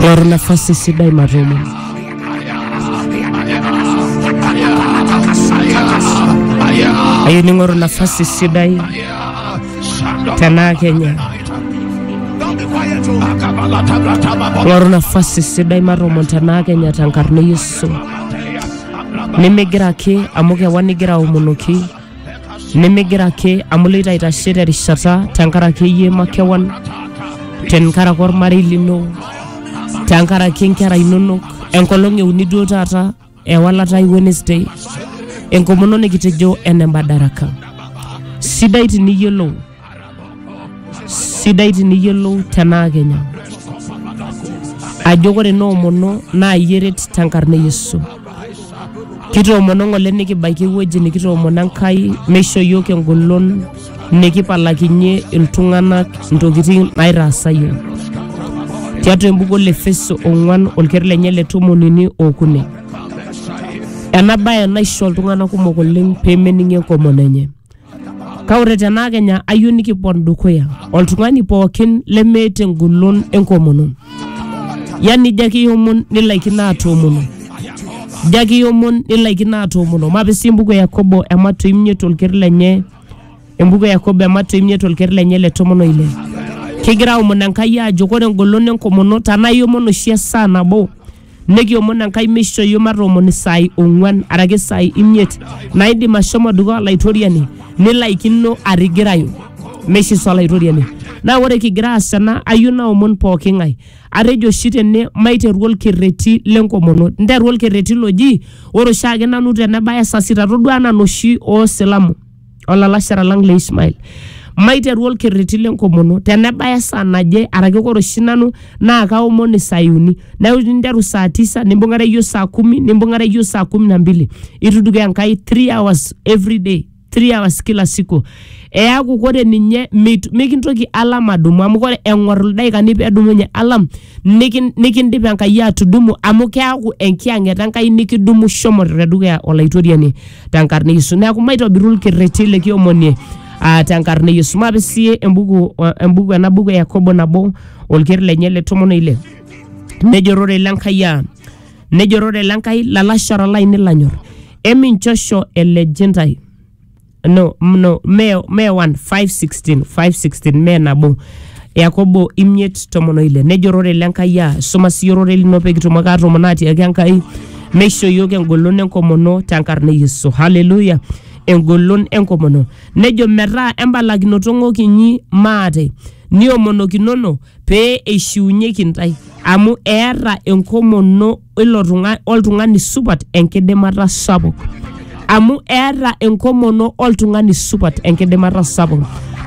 Loro nafasi sidai matomo. Ayieu ning'oru nafasi sidai tenaa Kenya. Ng'oru nafasi sidai matomo tenaa Kenya tenkarna e Yesu. Nimigira ake amu kewan igira aomonoki nimigira ake amu iloito aitashe terishata tenkaraki iyie makewan tenkaraki ormarei lino tenkaraki inkera inonok enkolong euni duo taata ewalata e wednesday enkomono nikitejo ene mbadaraka sidai tiniyiolou sidai tiniyiolou tenaa kenya ajo ore noomono naa iyie eret tenkarna e yesu kitoomono ng'ole nikibaiki ewueji nikitoomono enkai meisho yiok engolon nikipalakinyie iltung'anak intokitin naitaasa yiok tiatua embuku le efeso ong'uan olkerenket lenye le tomon uni okuni ena baye naisho iltung'anak kumok oleng pemening enkomono enye Kake ore tenaa kenya ayieu nikipon dukuya oltung'ani pookin lemeeta engolon enkomono, yani ijo ake iomon nilaikino atoomono, ijo ake iomon nilaikino atoomono. Mape sii embuku e Yakobo ematua imiet olker lenye, embuku e Yakobo ematua imiet olker lenye le tomon oile. Kigira aomon Enkai aajo ore engolon enkomono tenaa iomon oshi esaa nabo Nekiomon Enkai meishoo iyiook matoomon isaai ong'uan araki isaai imiet naaidim ashomo dukuya Olaitoriani nilaikino atigirayu meishisa Olaitoriani. Naa ore kigira aas ena ayieu naomon pooki ng'ae atejo oshi tene maiteru olkerreti le nkomono. Nteru olkerreti loji ore oshiake nanu tenebaya saa sita todua anaa inoshi oo silamu olalashera lang le Ishmael maiteru olkerreti lenkomono tenebaya esaa naje araki ore oshi nanu naa kaomon Isayuni neeku ninteru saa tisa nimbung'are iyio saa kumi nimbung'are iyio saa kumi na mbili ituduke Enkai three hours every day three hours kila siku eaku kore ninye mit mikintoki alam adumu amu kore eng'orr ildaikani pedumunye alam nikin- nikindip Enkai atudumu amu keaku enkiyang'et Enkai nikidumu shomo te dukuya Olaitoriani tenkarna e Yesu. Neaku maitobiru ilkerreti likiomonie ah, tenkarna e Yesu. Maape sii embuku embuku ena buku e Yakobo nabo olker lenye le tomon oile. Nejo orore le Enkai aa nejo orore le Enkai lalashara lainei lanyor eminchosho elej intae no, no me, me 1 516 516 me nabo yakobo imiet tomon oile nejo ororei le nkai aa suma siyie ororei lino pee kitumoki aatomono atiaki enkai meisho iyiook engolon enkomono tenkarna e yesu haleluya engolon enkomono nejo metaa embalakinoto ng'ok inyi maate niomonokinono pee eishiunyeki intae amu eeta enkomono ilo tung'ani oltung'ani supat enkidimata sapuk amu eeta enkomono oltung'ani supat enkidimata sapuk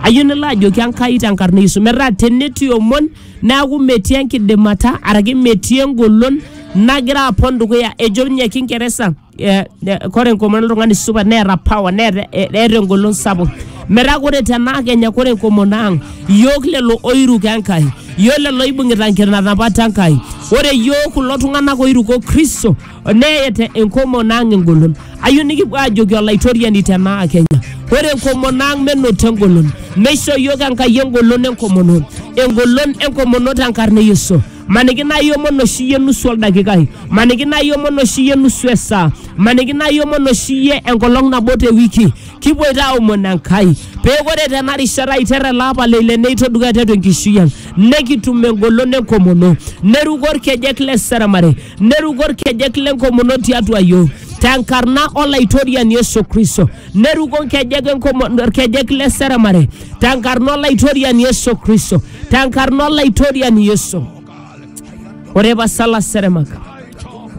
ayieu nilo ajoki enkai tenkarna yesu metaa tenetii omon neaku metii enkidimata araki metii engolon nagira apon dukuya ejo ninye kingeresa eh, eh, kore enkomono oltung'ani supat neeta power neeta eh, eeta engolon sapuk metaa kore tenaa kenya kore enkomono ang iyiok lelo oiruko enkai iyiok lelo oibung'ita nkitanapat enkai ore iyiok kulo tung'anak oiruko kristo neeta enkomono ang engolon ayieu nikipuo ajoki olaitoriani tenaa kenya ore enkomono ang menoto engolon meisho iyiok enkai engolon enkomono engolon enkomono tenkarna e yesu maniki naa iomon oshi iyie nusu oldakikai maniki naa iomon oshi iyie nusu esaa maniki naa iomon oshi iyie enkolong nabo te wiki kipuoito aomon enkai pee ore tena rishata aiter ele apa le ile neito dukuya tiatua enkishui ang nekitum engolon enkomono neruko orkejek le seremare neruko orkejek lenkomono tiatua yiok tenkarna olaitoriani Yesu Kristo neruko nkejek enkomono orkejek le seremare tenkarna olaitoriani yesu kristo tenkarna olaitoriani yesu ore pasa laseremak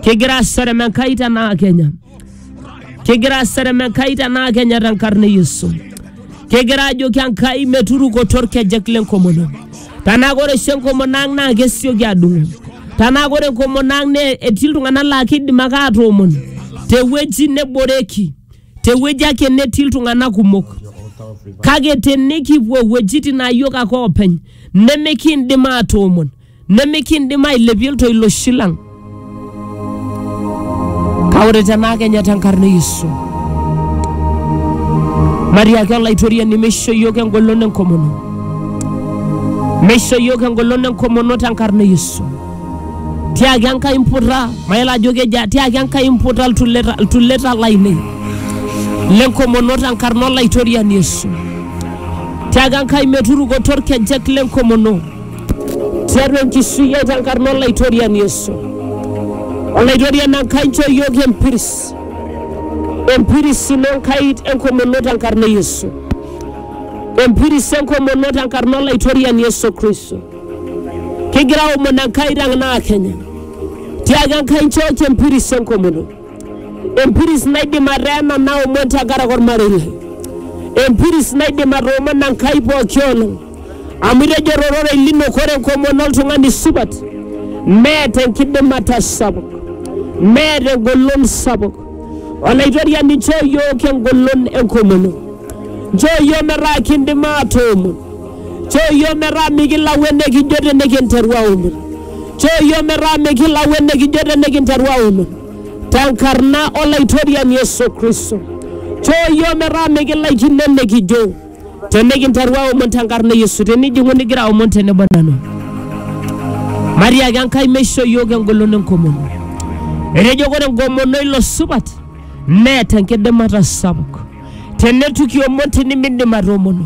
kigira aserem enkai tenaa kenya kigira aserem enkai tenaa kenya tenkarna e yesu kigira ajoki enkai meturukoto orkejek lenkomono tenaa ore oshi enkomono ang naa kesioki adung'u tenaa ore enkomono ang naa etii iltung'anak laa kidim ake atoomon tewueji neboreki tewueji ake netii iltung'anak kumok kake tenikipuo iwuejitin naa yiok ake oopeny nemikiindim atoomon nemikiindim ailepie iltoiloshi lang kake ore tenaa kenya tenkarna e Yesu matiaki olaitoriani meisho yiok engolon enkomono meisho yiok engolon enkomono tenkarna e Yesu tiaki Enkai mputa, mayiolo ajo kejaa, tiaki Enkai mputa iltuleta, iltuleta lainei lenkomono tenkarna olaitoriani Yesu. Tiaki Enkai meturukoto orkejek lenkomono tiatua enkishui ai tenkarna olaitoriani Yesu. Olaitoriani Enkai nchoo iyiook empiris, empiris ino Enkai enkomono tenkarna e Yesu, empiris enkomono tenkarna olaitoriani Yesu Kristo. Kigira aomon Enkai tenaa Kenya tiaki Enkai nchooki empiris enkomono, empiris naidim ateena naomon tenkaraki ormarei lai, empiris naidim atoomona Enkai pooki olong amu itejo tororei lino kore enkomono oltung'ani supat neeta enkidimata sapuk, neeta engolon sapuk. Olaitoriani nchoo iyiook engolon enkomono, nchoo iyiook metaa kindim aatoomon Nchoo iyiook metaa mikilau enikijo tenikinteru aomon. Nchoo iyiook metaa mikilau enikijo tenikinteru aomon. Tenkarna Olaitoriani Yesu Kristo. Nchoo iyiook metaa mikilaikino enikijo tenikinteru aomon tenkarna e Yesu. Tenijing'u nigira aomon tenebo nanu. Matiaki Enkai meisho iyiook engolon enkomono. Etejo ore enkomono ilo supat neeta enkidimata sapuk. Teneitu kiomon tinimidim atoomono.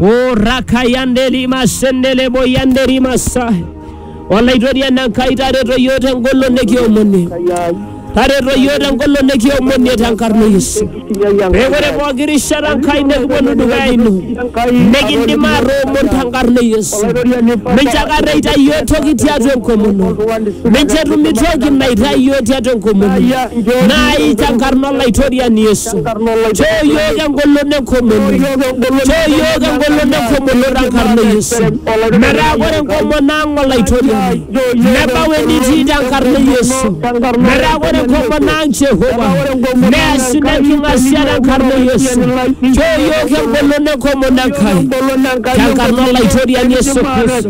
o rakayandeli masendele boyandeli masai olaitoriani enkai tareto yiok tengolo nikiomonie tareto yiok tengolo nikiomonie tenkarna yesu pekore pooki rishata nkai nikiponu dukuya ino nikindim atoomon tenkarna yesu mincho akata itai yiok toki tiatua enkomono mincho etumi toki naitai yiok tiatua enkomono naai tenkarna olaitoriani yesu tenkarna Choo iyiook engolon enkomono. Choo iyiook engolon enkomono tenkarna e Yesu. Metaa ore enkomono ang' olaitoriani nebau enitii tenkarna e Yesu. Metaa ore enkomono ang' Jehova neas ina king'asia tenkarna e Yesu. Choo iyiook engolon enkomono Enkai tenkarna olaitoriani Yesu Kristo.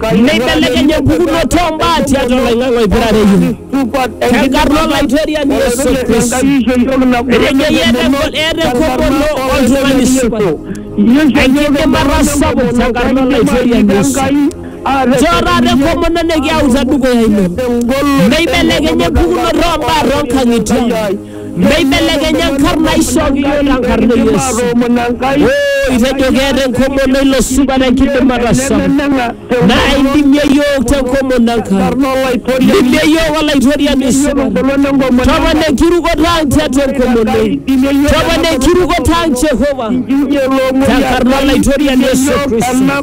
Neibelekeny empukunoto oo mbaa tiatua oloing'ang'e oipirare iyiook. Tenkarna Olaitoriani Yesu Kristo. Etejo eeta enko- eeta enkomono oltung'ani supat. Enkidimata sapuk tenkarna Olaitoriani Yesu. Nchoo taata enkomono nikiauta dukuya ino. Neibelekeny empukunoto oo mbaa too nkang'itie ang. Meibelekenya nkarn aishooki iyiook tenkarna e Yesu. Maatoomono Enkai Oo, itejo keeta enkomono ilo supa tenkidimata sapuk. nemeneng'a Naa indimie iyiook tenkomono Enkai. tenkarna Olaitoriani Indimie iyiook Olaitoriani iyiolo supa. engolon enkomono Topona enkirukoto ang tiatua enkomono ino. Topona enkirukoto ang Jehova. Tenkarna Olaitoriani Yesu Kristo.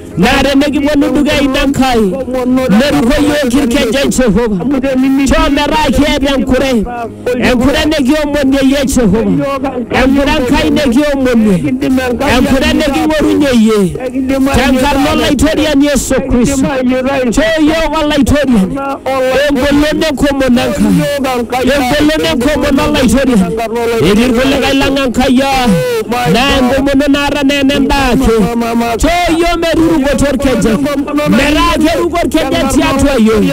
Naa tenikipuonu dukuya ina Nkai, neruko iyiook ilkeje Jehova. Nchoo metaa kiata enkure, enkure nikiomonie iyie Jehova, enkure Enkai nikiomonie, enkure niking'orunye iyie, tenkarna Olaitoriani Yesu Kristo. Nchoo iyiook Olaitoriani. Egol enekumo nankai, egol enekumo nalaitoriani. Etii irkulikae lang Enkai aa naa enkomono naata naa enendaa ake. Choo iyiook meturukoto orkejek, metaa keruko orkejek tiatua iyiook,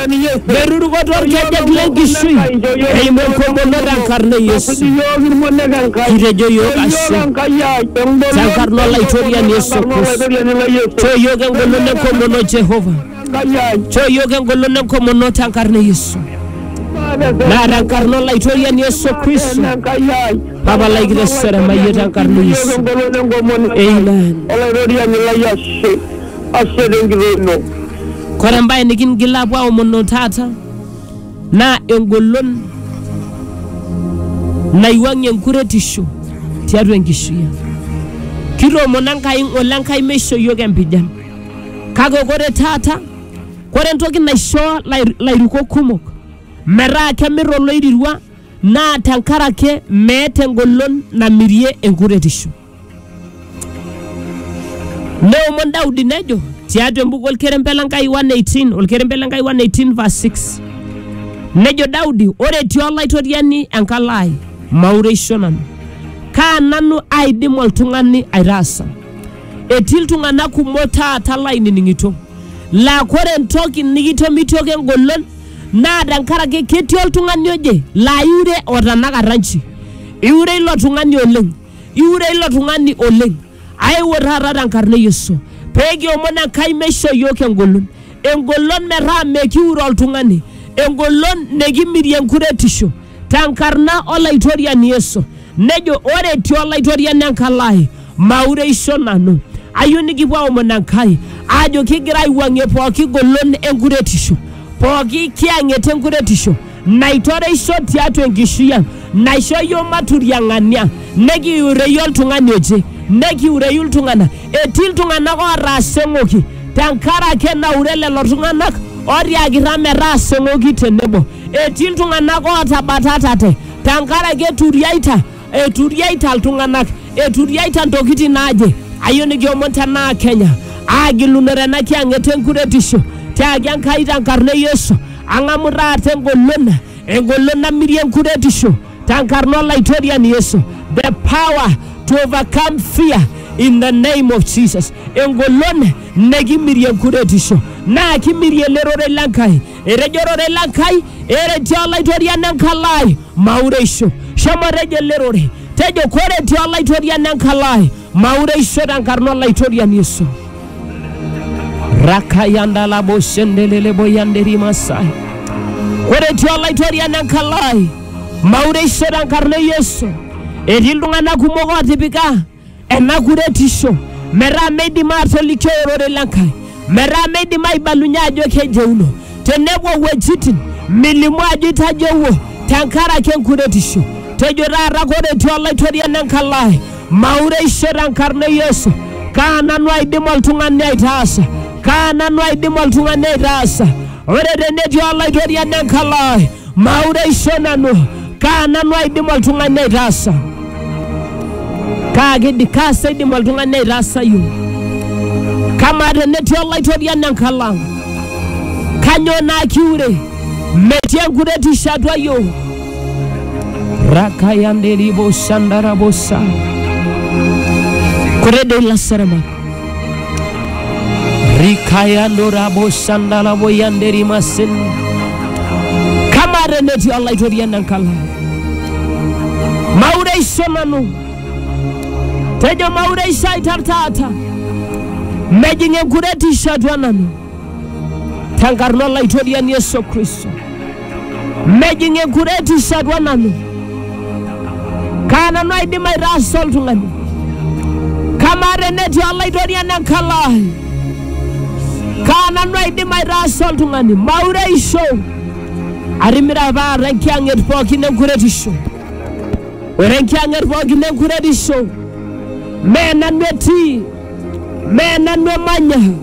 meturukoto orkejek lenkishui eimu enkomono tenkarna e Yesu. Kitejo iyiook ashe tenkarna olaitoriani Yesu Kristo. Choo iyiook engolon enkomono Jehovah. Chooyiook engolon enkomono te nkarna e Yesu. Naa te nkarna Olaitoriani Yesu Kristo. Papa lai kitesere mayie te nkarna e Yesu. Amen. Olaitoriani lai ashe ashe tenkitoo ino Kore embae nikingil aapuo aomono taata naa engolon naiwuang'ie enkuretisho tiatua enkishui ang. Kitoomono Enkai ng'ole Enkai meisho iyiook empijan. Kake kore taata, kore entoki naishoo lai- lairukok kumok metaa kemir oloirirua naa tenkaraki meeta engolon namirie enkuretisho. Neomon Daudi nejo tiatua embuku olkerembe le Nkai 118, olkerembe le Nkai 118 verse 6. Nejo Daudi, ore etii olaitoriani enkalo ai, maureisho nanu. Kaa nanu aidim oltung'ani aitaasa? Etii iltung'anak kumok taata lainining'ito laa kore entoki nikitomitioki engolon naa tenkaraki ketii oltung'ani oje laa iure otanakata nchi. Iure ilo tung'ani oleng, iure ilo tung'ani oleng. Aewuo taata tenkarna e Yesu pee kiomon Enkai meisho iyiook engolon, engolon metaa mekiure oltung'ani, engolon nikimirie enkuretisho. tenkarna olaitoriani Yesu nejo ore etii olaitoriani enkalo ai maureisho nanu ayieu nikipuo aomon Enkai aajo kigira aiwuang'ie pooki golon enkuretisho pooki kiyang'et enkuretisho naitoreisho tiatua enkishui ang naisho yiok maturiang'ani ang nekiureyu oltung'ani oje nekiureyu iltung'anak etii iltung'anak ootaasa eng'oki tenkarake naure lelo tung'anak otiakita metaasa eng'oki tenebo Etii iltung'anak ootabatatate tenkaraki eturiaita, eturiaita iltung'anak, eturiaita ntokitin naaje. Ayieu nikiomon tenaa Kenya aagilunore ena kiyang'et enkuretisho tiaki Enkai tenkarna e Yesu. Ang'amu taata engolon, engolon namirie enkuretisho tenkarna Olaitoriani Yesu. The power to overcome fear in the name of Jesus. Engolon nekimirie enkuretisho naa kimirie ele rorei le Nkai etejo ororei le Nkai, ereti Olaitoriani enkalo ai maureisho. Shomo tejo ele rorei, tejo koreti Olaitoriani enkalo ai maureisho tenkarna Olaitoriani Yesu. Rakayandalaboshendeleleboyanderimasai. Koreti Olaitoriani enkalo ai maureisho tenkarna e Yesu. Etii iltung'anak kumok ootipika ena kuretisho metaa meidim aatolikio ororei le Nkai, metaa meidim aibalunye ajo kejeuno tenepuo wuejitin milimu ajo itajeuo tenkaraki enkuretisho. Tejo taata kore etii Olaitoriani enkalo ai, maureisho tenkarna e Yesu. Kaa nanu aidim oltung'ani aitaasa? Kaa nanu aidim oltung'ani aitaasa? Ore tenetii Olaitoriani enkalo ai Maureisho nanu, kaa nanu aidim oltung'ani aitaasa? Kaa kidi, kaa sa idim oltung'ani aitaasayu? Kamaa tenetii olaitoriani enkalo ang', kanyoo naa kiure? Metii enkuretisho atua yiok. Rakayanderibo shandarabosa. Kore dei lasaramak. rikayandorabosandalaboyanderimasin kamare netii olaitorian enkala maureisho nanu tejo maureisho aitar taata mejing enkuretisho atua nanu tenkarna olaitoriani Yesu Kristo. Mejing enkuretisho atua nanu. Kaa nanu aidim aitaasa oltung'ani? Kamaa tenetii olaitoriani enkalo ai? Kaa nanu aidim aitaasa oltung'ani? Maureisho atimira paata enkiyang'et pookin enkuretisho. Ore enkiyang'et pookin enkuretisho mee nanu etii, mee nanu emanya.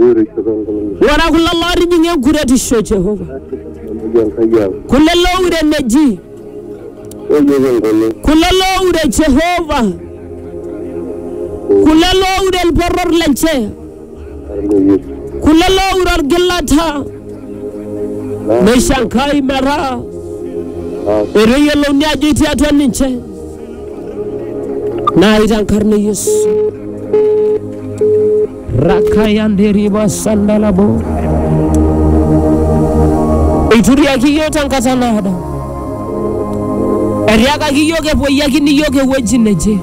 Ore kulo lootijing'a enkuretisho e Jehova, kulo looure eneji, kulo looure Jehova, kulo looure olporor lenche, kulo looure olgilata, neishankai metaa etoyiolouni ajo etii atua ninche. naa itankarna yesu rakayanderiba sandalabo eituriaki iyiook tenkata naado etiakaki iyiook epuoyiakini iyiook ewueji neje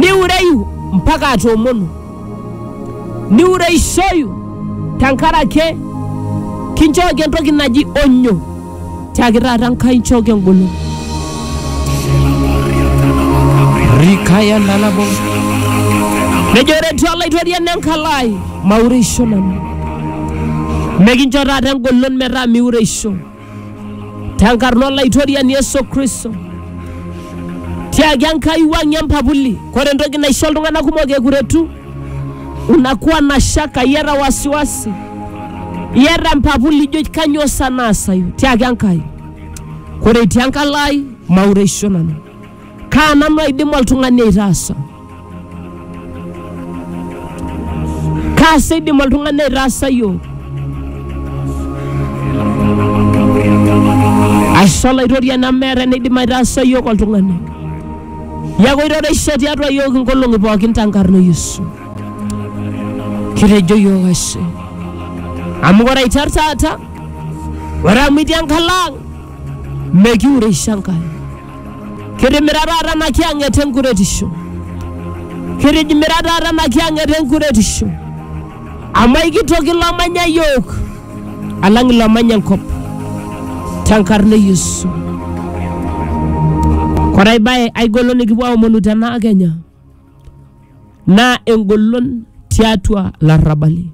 niureyu mpaka atoomonu niureishoyu tenkaraki kinchooki entoki naji onyo Tiaki taata Enkai nchooki engolon. Rikaya nalabo. Nejo ore etii Olaitoriani enkalo ai, maureisho nanu. Mekincho taata engolon metaa miureisho. Tenkarna Olaitoriani Yesu Kristo. Tiaki Enkai wuang'ie empapuli. Kore entoki naisho iltung'ana kumok ekuretu unakuwa na shaka yera wasiwasi yera mpapu lijo kanyoo sa naasayu tiaki Enkai kore itii enkalo ai maureisho nanu kaa nanu aidim oltung'ani aitaasa kaa sa eidim oltung'ani aitaasa yiok ashe olaitoriani amu meeta eneidim aitaasa yiok oltung'ani Neaku iroreishe tiatua iyiook inkolong'i pookin tenkarna e Yesu. Kitejo iyiook ashe. Amu ore aiteru taata, ore amu itii enkalo ang, mekiureisho Enkai. Kitimira taata ena kiyang'et enkuretisho. Kitimira taata ena kiyang'et enkuretisho. Amu aikitoki ilo omanya iyiook. alang ilo omanya enkop tenkarna e Yesu. Ore ai bae ai golon nikipuo aomonu tena kenya naa engolon tiatua larrabali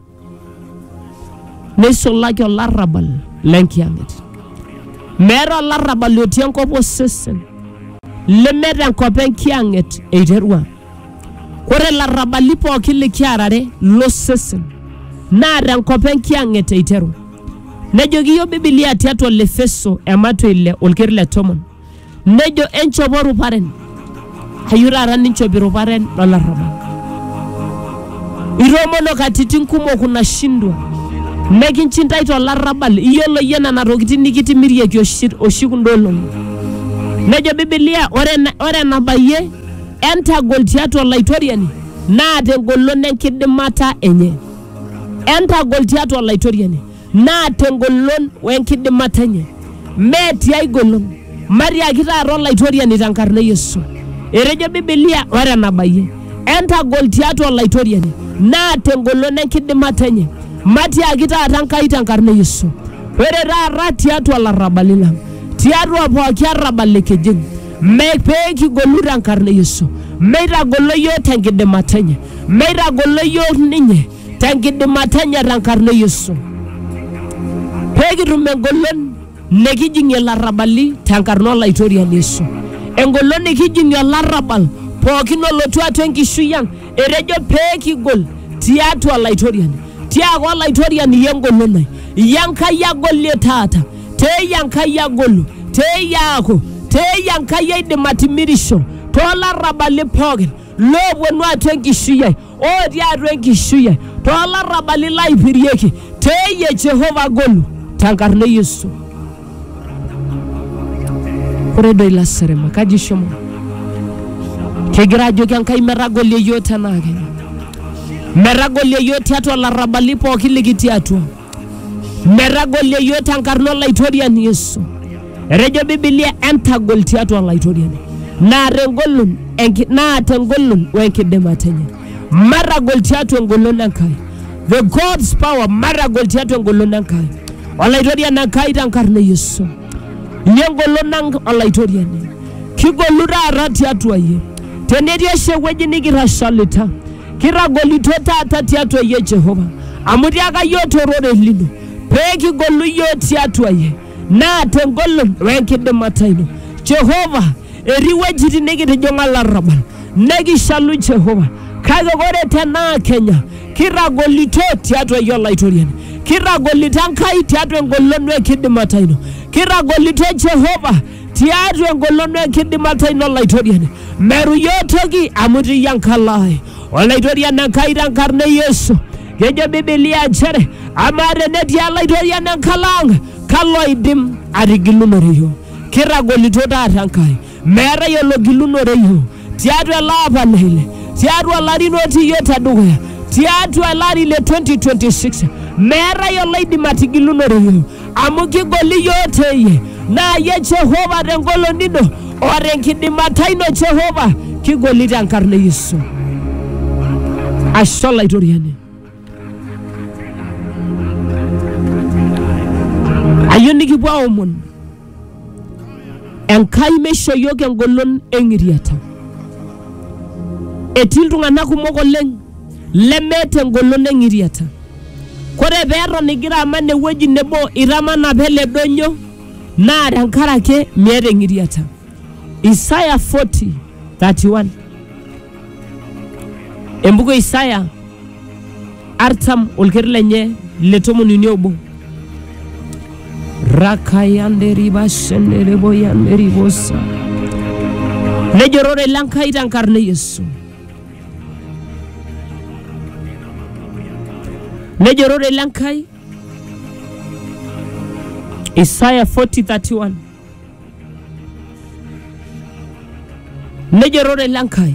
neisulaki olarrabal lenkiyang'et. Meeta olarrabal otii enkop osesen lemeeta enkop enkiyang'et eiterua. Ore larrabali pooki likiarare lo sesen naa te nkop enkiyang'et eiteru. Nejoki iyiook Bibilia tiatua Olefeso ematua ile olker le tomon, nejo enchopo ruparen, ayieu taata ninchop iruparen lo larrabal. Itoomono katitin kumok unashindwa, mekinchindai to larrabal, iyiolo iyie nena tokitin nikitimirieki oshi, oshi kunda olong'i. Nejo Bibilia ore, ore enabayie Entagol tiatua Olaitoriani naa tengolon enkidimata enye. Entagol tiatua Olaitoriani naa tengolon wenkidimata enye. Mee tiai golon. Matiaki taata Olaitoriani tenkarna e Yesu. Etejo Bibilia ore enabayie. Entagol tiatua Olaitoriani naa tengolon enkidimata enye. Matiaki taata Enkai tenkarna e Yesu. Ore taata tiatua larrabali lang, tiatua pooki arrabal likijing Me pee kigolu te nkarna e Yesu, meitagolo iyiook te nkidimata enye, meitagolo iyiook ninye te nkidimata enye te nkarna e Yesu. Pee kitum engolon nikijing'ie ilarrabali te nkarna Olaitoriani Yesu, engolon nikijing'ie olarrabal pookin olotu atua enkishui ang. Etejo pee kigol tiatua Laitoriani, tiaaka Olaitoriani iyie engolon ai, iyie Enkai agolie taata, teeyie Enkai agolu, teeyie aaku, teeyie Enkai aidim atimirisho toolarrabali pookin loopuonu atua enkishui ai, ootii atua enkishui ai, toolarrabali laaipirieki, teeyie Jehova agolu tenkarna e Yesu. ore doi lasirima kaji ishomo kigira ajoki enkai metagolie yiok tenaake metagolie yiok tiatua larrabali pooki likitii atua metagolie yiok tenkarna olaitoriani yesu etejo bibilia entagol tiatua olaitoriani naa tengolon enki- naa tengolon wenkidimata enye matagol tiatua engolon Enkai. The God's power, matagol tiatua engolon Enkai. Olaitoriani Enkai tenkarna e Yesu. Iyie engolon ang Olaitoriani. Kigolu taata tiatua iyie. Tenetii oshi ewueji nikirashalita, kitagolito taata tiatua iyie Jehova. Amu tiaka iyie tororei lino, pee kigolu iyie tiatua iyie. naa tengolon wenkidimata ino. Jehova, etii wuejitin nikitijing'a larrabal nekishalu Jehova kake ore tenaa Kenya kirragolito tiatua iyie Olaitoriani, kirragolito Enkai tiatua engolon wenkidimata ino, kirragolito Jehova tiatua engolon wenkidimata ino Olaitoriani. Meru iyiook toki amu itii enkalo ai. Olaitoriani Enkai tenkarna e Yesu Kejo Bibilia nchere amaa tenetii Olaitoriani enkalo ang' kalo oidim atigilunore iyiook? Kitagolito taata Enkai, meetae ologilunore iyiook tiatua ele apa le ile, tiatua ilarin otii iyiook te dukuya, tiatua ele ari le 2026 meetae oloidim atigilunore iyiook. amu kigoli iyiook teyie naa yie Jehova tengolon ino o tenkidimata ino Jehova kigoli tenkarna e Yesu. Ashe Olaitoriani. Ayieu nikipuo aomon Enkai meisho iyiook engolon eng'iriata. Etii iltung'anak kumok oleng lemeeta engolon eng'iriata. Kore pee eton igira aman ewueji nebo itamana pee ele doinyo naa tenkaraki miata eng'iriata. Isaya 40:31 Embuku e Isaya artam olker lenye le tomon uni obo. Rakayanderibashendereboyanderibosa. Nejo ororei le Nkai tenkarna e Yesu. Nejo ororei le Nkai Isaya 40:31. Nejo ororei le Nkai.